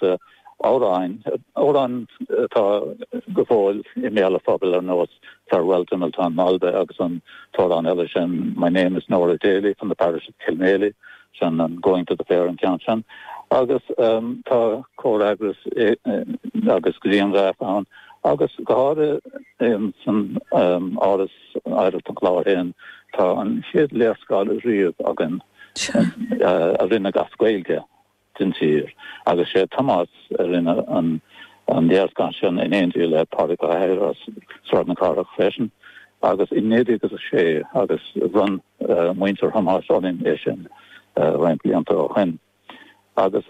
amhráin, amhráin atá go fóill i mbéal an phobail ar nós Farewell to Miltown Malbay agus an t-amhrán eile sin My name is Nora Daly from the parish of Kilmaley, agus an Going to the Fair an ceann sin. Agus tá comhfhreagras agus grianghraif ann agus go háirithe san Áras Oidhreachta an Chláir féin tá an chéad léarscáil riamh againn a rinneadh as Gaeilge. den tír. Agus sé Tomás a rinne an léarscáil sin in éindí le Pádraig Ó hEithir as Sráid na Cathrach freisin agus i 1906 agus bhronn muintir Thomáis orainn é sin roinnt blianta ó shoin agus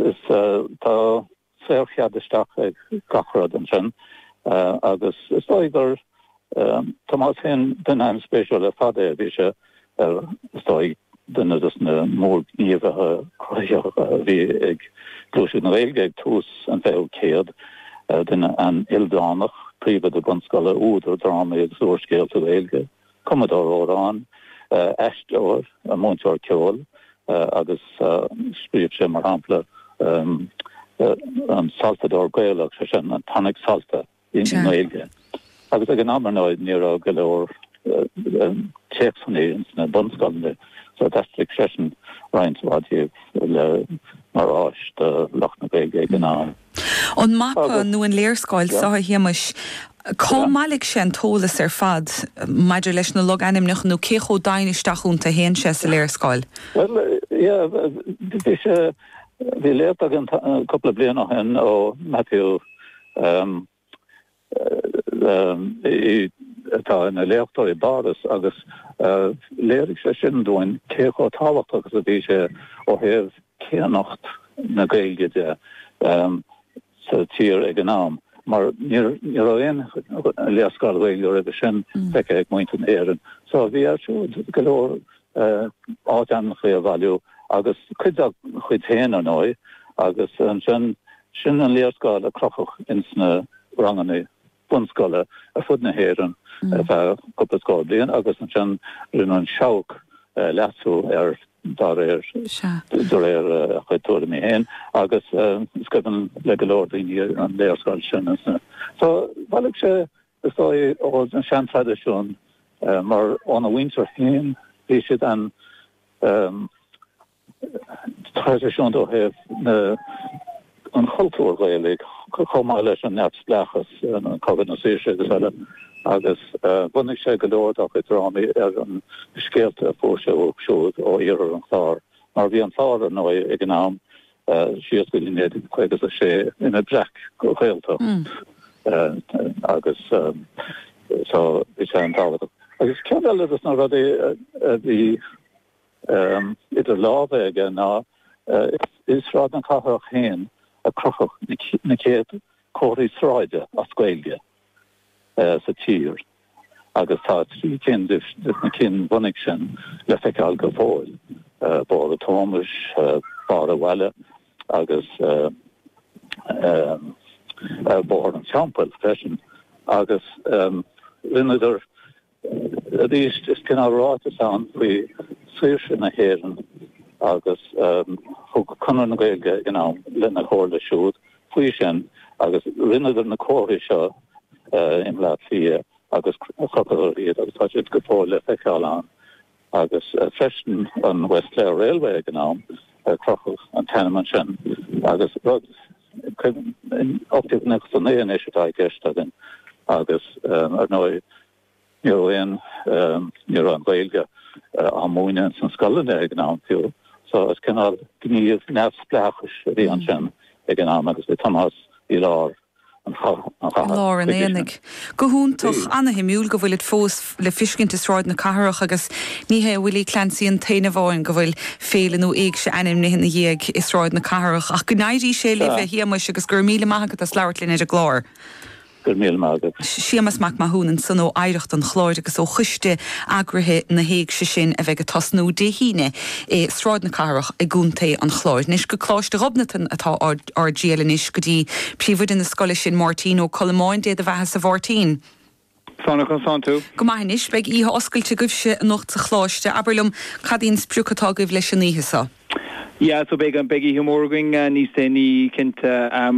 tá saor-chead isteach ag gach rud ansin agus is dóigh gur Tomás féin, duine an-spéisiúil ar fad é. Bhí sé ar, is dóigh, duine de na mórghníomhaithe cruthaitheacha a bhí ag gluaiseacht na Gaeilge ag tús an fichiú céad, duine an-ildánach, príomhoide bunscoile, údar drámaí agus úrscéalta Gaeilge, cumadóir amhrán, aisteoir, múinteoir ceoil agus scríobh sé, mar shampla, an Soltóir Gaelach, sé sin, an tonic solfa. i nGaeilge agus ag an am, ar ndóigh, ní raibh go leor téacsanna insna bunscoileanna so d'aistrigh seisean roinnt mhaith díobh le, mar áis do lucht na Gaeilge ag an am. An mapa nó an léarscáil so, a Shéamais, cár bhailigh sé an t-eolas ar fad maidir leis na logainmneacha nó cé chomh doimhin isteach iontu a théann sé sa léarscáil? Bhuel, yeah, bhí sé, bhí léacht againn cúpla bliain ó shin ó Matthew, J.P. atá ina léachtóir i bPáras agus léirigh sé sin dúinn cé chomh tábhachtach agus a bhí sé ó thaobh céannacht na Gaeilge de sa tír ag an am mar ní raibh aon léarscáil Ghaeilge roimhe sin feicthe ag muintir na hÉireann. So bhí air siúd go leor áitainmneacha a bhailiú agus cuid dá chuid féin, ar ndóigh, agus ansin Sin an léarscáil a crochadh ins na ranganna bunscoile ar fud na hÉireann ar feadh cúpla scór bliain agus ansin rinne an Seabhac leasú air dá réir, de réir a chuid tuairimí féin, agus is cuimhin le go leor daoine an léarscáil sin. So, bhailigh sé, is dóigh, ó na seantraidisiúin mar óna mhuintir féin bhí siad an, traidisiúnta ó thaobh na an chultúir Ghaelaigh, chomh maith leis an neamhspleáchas, Cogadh na Saoirse agus eile, agus bhunaigh sé go leor dá chuid drámaí ar na scéalta a fuair sé uaidh siúd ó iarthar an Chláir, mar bhí an Clár, ar ndóigh, ag an am, síos go dtí 1956, ina breac-Ghaeltacht agus so bhí sé an-tábhachtach. Agus ceann eile de na rudaí a bhí. idir lámha aige ná i Sráid na Cathrach féin a crochadh na chéad chomharthaí sráide as Gaeilge sa tír agus tá trí cinn de na cinn bhunaidh sin le feiceáil go fóill, Bóthar Thomáis, Barr a' Bhaile agus Bóthar an Teampaill freisin. Agus rinneadar. arís, is cineál ráiteas ann faoi shaoirse na hÉireann agus thug Conradh na Gaeilge in am lena chomhairle siúd faoi sin agus rinneadar na comharthaí seo in Bleá Cliath agus chrochadar iad agus tá siad go fóill le feiceáil ann agus freisin an West Clare Railway ag an am, crochadh an t-ainm ansin agus rud 1891 anois atá i gceist againn agus, ar ndóigh, ní raibh aon, ní raibh an Ghaeilge á múineadh ins na scoileanna ag an am fiú so is cineál gníomh neamhspleáchais a bhí ansin ag an am agus bhí Tomás i lár an chatha chuige sin. Go hiúntach, ana-shuimiúil go bhfuilid fós. le feiscint i Sráid na Cathrach agus ní hé Willie Clancy an t-aon duine amháin go bhfuil féile nó éigse ainmnithe ina dhiaidh i Sráid na Cathrach. Ach go n-éirí sé libh, a Shéamais, agus go raibh míle maith agat as labhairt linn ar an gclár. Go raibh míle maith agat. Séamas Mac Mathúna ansan ó Oidhreacht an Chláir agus ó choiste eagraithe na héigse sin a bheidh ag tosnú Dé hAoine i Sráid na Cathrach i gContae an Chláir. Anois go Coláiste Ghobnatan atá ár dtriall anois go dtí Príomhoide na scoile sin Máirtín Ó Colamáin, Dé do bheathasa, a Mháirtín. Conas tánn tú. Go maith anois, beidh oíche oscailte agaibhse anocht sa Choláiste. Abair liom, cad í an sprioc atá agaibh leis an oíche seo? Yeah, so beidh oíche mhór againn níos déanaí, cinnte.